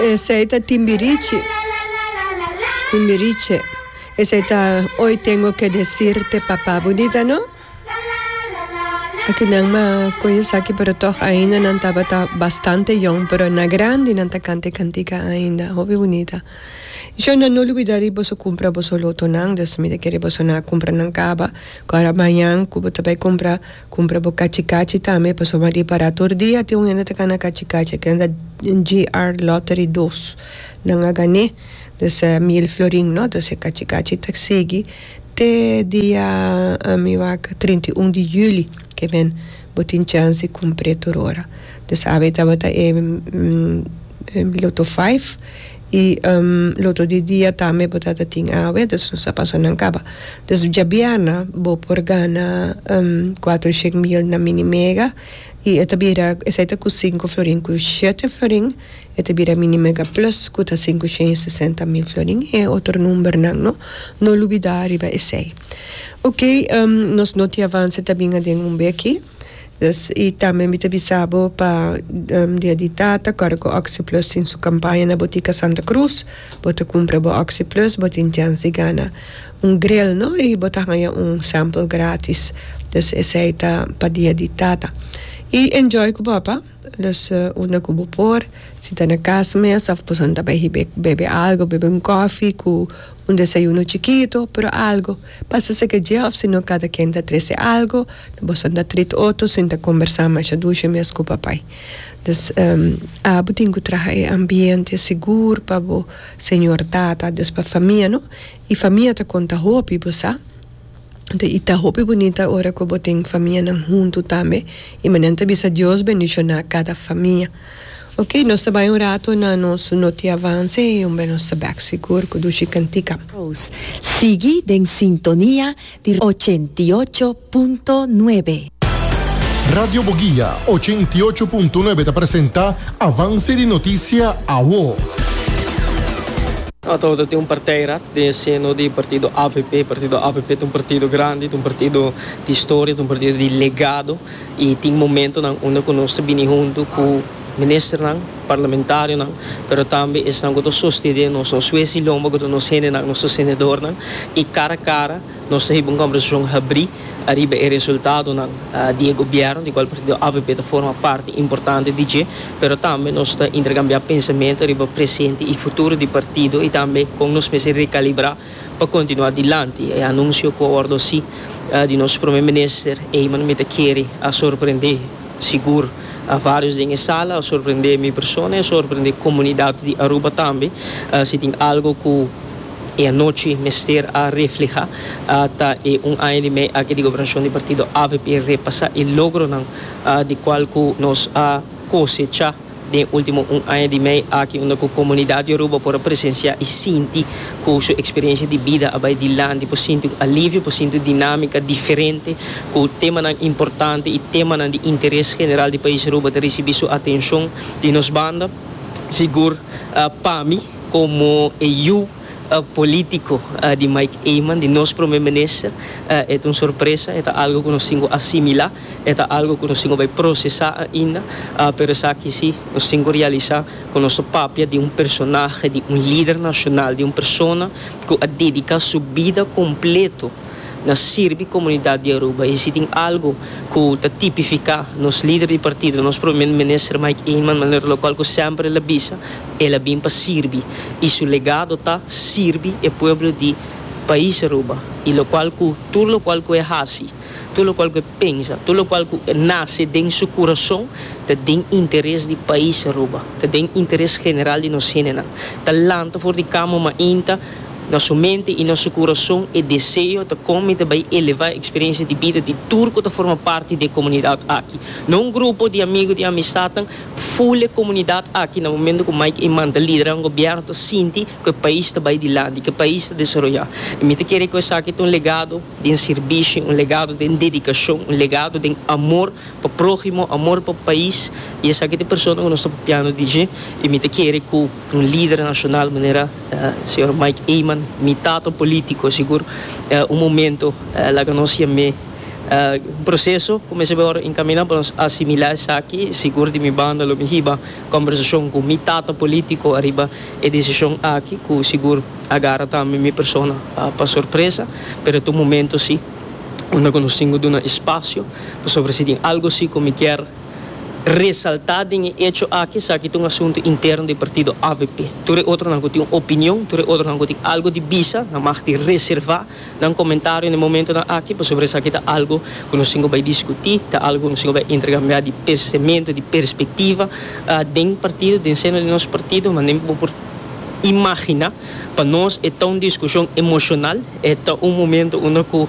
Esei ta Timbirichi, Timbiriche. Esei ta Hoy tengo que decirte papá. Bonita, no? Aki nan ma koye saki, pero toch ainda nan tabata bastante jong, pero na grandi nan ta kante kantika ainda. Hopi bonita. Yo nan no olbida di boso kumpra boso lotonan, dus mi ta kere boso na kumpra nan kaba, ku ora mañan ku bo ta bai kumpra Cumpra bo cachi cachi tambe pasobra bo a di para tur dia tin un hende ta cana cachi cachi e kenda GR lottery dos nan a gané dese mil florin no entonces e cachi cachi ta sigui te dia mi wak trinta y un di juli ke men bo tin chance di cumpr'e tur ora entonces awe tabata e loto five. Y loto di dia tambe bo ta ta tin awe, dus nos a pasa nan caba. Dus djabièrna bo por gana cuatro sheet meal na Mini Mega y e ta bira, esey ta cust cinco florin, cu shete florin e ta bira Mini Mega Plus cu ta cinco sheen y sesenta mil florin y otro numbernan no. No lubida riba esey. Ok, nos no te avance ta bin aden un be aki. Nos i tambe mi ta bisa bo pa dia di tata kor ku oxiplus tin su kampaña na botika santa cruz bo ta kumpra bo oxiplus bo tin chans di gana un gril no i bo ta haña un sample gratis dus esei ta pa dia di tata i enjoy ku bo apa. Los unda ku bo por. Si ta na kas mes of boso ta bai hib'é bebe algo, bebe un kòfi ku un desayuno chikitu, pero algo. Pasa seke dje of sino kada ken ta trese algo, boso ta treat otro sin ta kombersá masha dushe mes ku papai. Des abo tin ku traha e ambiente sigur pa bo señor tata, dus pa famia no, i famia ta konta hopi bo sa. Enton y ta hopi bunita ora cu bo tin famianan hunto tambe y manera nan ta bisa Dios bendiciona cada famia. Ok nos ta bay un rato na nos noti avance y homber nos ta bek sigur cu dushi cantica. Sigui den sintonia di ochenta y ocho punto nuebe. Radio Boguia, ochenta i ocho punto nuebe ta presenta Avance di Noticia Awo. Ato ta tin un parteirat den e seno di partido avp. Partido avp ta un partido grandi, ta un partido di historia, ta un partido di legado y tin momentonan unda cu nos ta bini hunto cu ministernan, parlamentarionan, pero tambe esnan cu ta sostene nos, nos huesilomba cu ta nos hendenan, nos sostenedornan y cara cara. Nos ta hiba un kombersashon habrí ariba e resultadonan di e gobièrnu, di kual partido avp ta forma parti importante di dje, pero tambe nos ta interkambiá pensamentu ariba presente i futuro di partido i tambe kon nos mester rekalibrá pa kontinuá dilanti. E anunsio ku a wòrdu hasi di nos Prome Minister Eman mi ta kere a sorprendé sigur vários den e sala, a sorprendé mi persona i a sorprendé komunidat di Aruba tambe si tin algu ku E anochi mester a refleha ta e un aña di mei aki di gobernashon di partido avp, repasa e logronan di kual ku nos a kosecha den ultimo un aña di mei aki unda ku komunidat di Aruba por a presensiá i sinti ku su eksperensia di bida a bai dilanti, por sinti un alivio, por sinti un dinámika diferente ku temanan importante i temanan di interes general di pais Aruba ta risibí su atenshon di nos banda. Sigur pa mi. Komo e yu polítiko di Mike Eman, di nos Prome Minister, e ta un sorpresa, e ta algu ku nos tin ku asimilá, e ta algu ku nos tin ku bai prosesá ainda, pero esaki sí, nos tin ku realisá ku nos ta papia di un personahe, di un lider nashonal, di un persona ku a dediká su bida kompletu na sirbi komunidat di Aruba. I si tin algu ku ta tipifiká nos lider di partido, nos Prome Minister Mike Eman, manera lokual ku semper el a bisa, El a bin pa sirbi y su legado ta sirbi e pueblo di Pais Aruba y locual cu tur locual cu e haci, tur locual cu e pensa, tur locual cu nace den su curazon ta den interes di Pais Aruba, ta den interes general di nos hendenan. Ta lanta for di cama mainta na su mente y na su curazon e deseo ta con mi ta bay eleva e experiencia di bida di tur cu ta forma parti di e comunidad aki. No un grupo di amigo, di amistadnan, Ful e komunidat aki na momento ku Mike i manta lidera un gobièrnu ta sinti ku e pais ta bai dilanti, ku e pais ta desaroyá. I mi ta kere ku esaki ta un legado den sirbishi, un legado den dedikashon, un legado den amor pa próhimo, amor pa pais i esaki ta e persona ku nos ta papiando di dje i mi ta kere ku un lider nashonal manera señor Mike Eman, mi tata polítiko sigur un momento laga nos yam'é. Un proseso ku mi a sibi ora enkaminá pa nos asimilá esaki. Sigur di mi banda lo mi hiba kòmbersashon ku mi tata polítiko ariba e desishon aki ku sigur a gara tambe mi persona pa sorpresa. Pero ta un momentu si unda ku nos tin ku duna espasio pasobra si tin algu si ku mi kier resaltá den e echo aki esaki ta un asuntu interno di partido avp. Tur e otronan ku tin un opinion, tur e otronan ku tin algu di bisa nan mag di reservá. Nan komentario n'e momentonan aki pasobra esaki ta algu ku nos tin ku bai diskutí, ta algu ku nos tin ku bai interkambiá di pensementu, di perspektiva den partido, den seno di nos partido. Manera bo por imaginá, pa nos e ta un diskushon emoshonal, e ta un momentu unda ku.